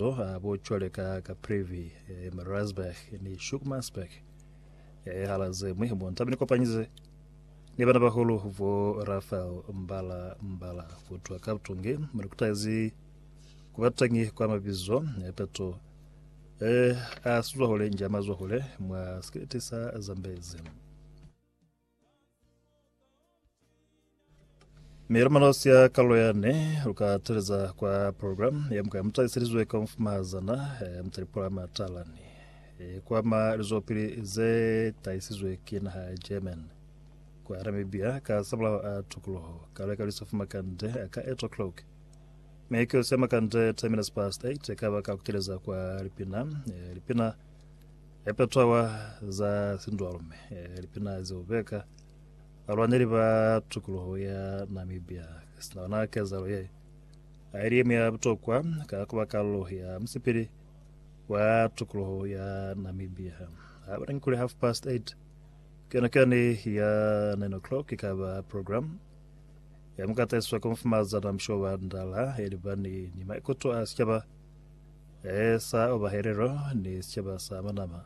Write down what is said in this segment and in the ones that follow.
mazo a bo cwale ka Caprivi, Mariazburg ni Shukmansburg. Hala zemwi mo ntabe ni kopanyize ni bana bahulu bo Rafael Mbala Mbala kutwa ka butungi mo ni kutaezi kuba tangi kwa mabizo peto a sizwahule nja mazwahule mwa sikiliti sa Zambezi. Milumanos ya kalo yane luka teleza kwa program ya mukaya mutaliselizwe ka mfumazana eh, mutalipula matalani eh, kwama lizopili ze taisizwe ki naha ya German kwa Namibia ka sabulaho a tukuluho kalo ka lisofu makande ka 8 o'clock mekeo se makande 10 minutes past 8 ka baka kuteleza kwa lipina eh, lipina Hape taba za sindwalume, lipina zeo beka balwaneli ba tukuluho ya Namibia sina bona kezahalo ye, aili yeñwi ya butokwa ka kuba kalulo ya musipili wa tukuluho ya Namibia. Ha bana kuli half past eight, keno kani ya nine o'clock ikaba program ya mukataiswa Komfumazana Mshoba Ndala yelibani ni maikuto a sichaba Sa oba helelo ni sicaba sa manama,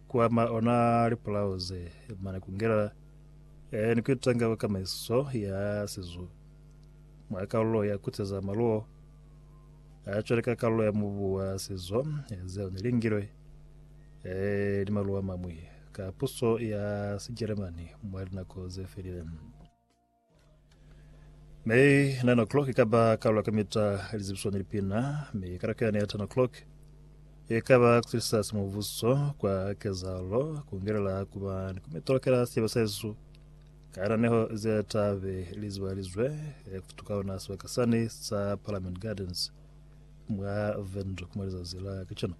ku ama ona lipulao ze, mane ku ngela ni ku itanga kwa kamaiso ya sizu mwa kalulo ya kuteza maluo a cwale ka kalulo ya mubu wa sizo zeo ne lingilwe ni maluo a mamwi ka puso ya Sijeremani mwa linako ze felile. Mi nine o'clock ikaba karolo ya kamita lizibiso ni lipina, mi karaka yane ya ten o'clock ikaba kutilisa simubuso kwa kezalo kungelela kuba ni kumitolokela siebe sesu kananeho ze tabe lizibalizwe eh, kufutuka ona sibaka sani sa Parliament Gardens mwa Windhoek mwa lizazi la kacana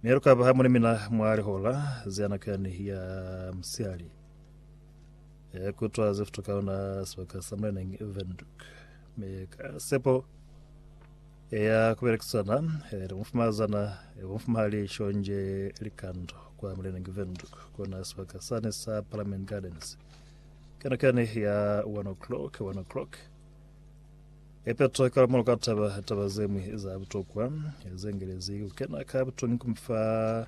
mi lukaba hamwe ni mina mwa lihola ze nako yani ya msiali Ya kutwa ze fituka ona sebaka sa Mreneng Windhoek. Me ka sepo ya kubelekisana le mufumazana mufumahali shonje likando kwa Mreneng Windhoek kona sebaka sane sa Parliament Gardens. Kana kane ya 1 o'clock 1 o'clock ephetho ka molo ka taba taba zemwe za butokwa zengelezi ukena ka butongi kumfa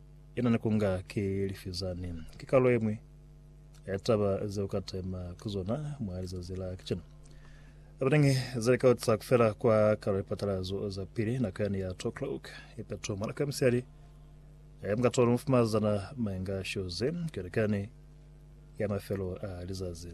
Yena ni kunga ki lifi zani. Ki kalulo ye ñwi ya taba ze uka tema ku zona mwa lizazi la kacenu. Abanengi zali ka utisa kufela kwa kalulo ya lipatalazo za pili, nako yani ya 2 o'clock ye peto mwa nako ya musiyali, ya muka tolo mufumazana mwenga shoze, ku elekani ya mafelo a lizazi.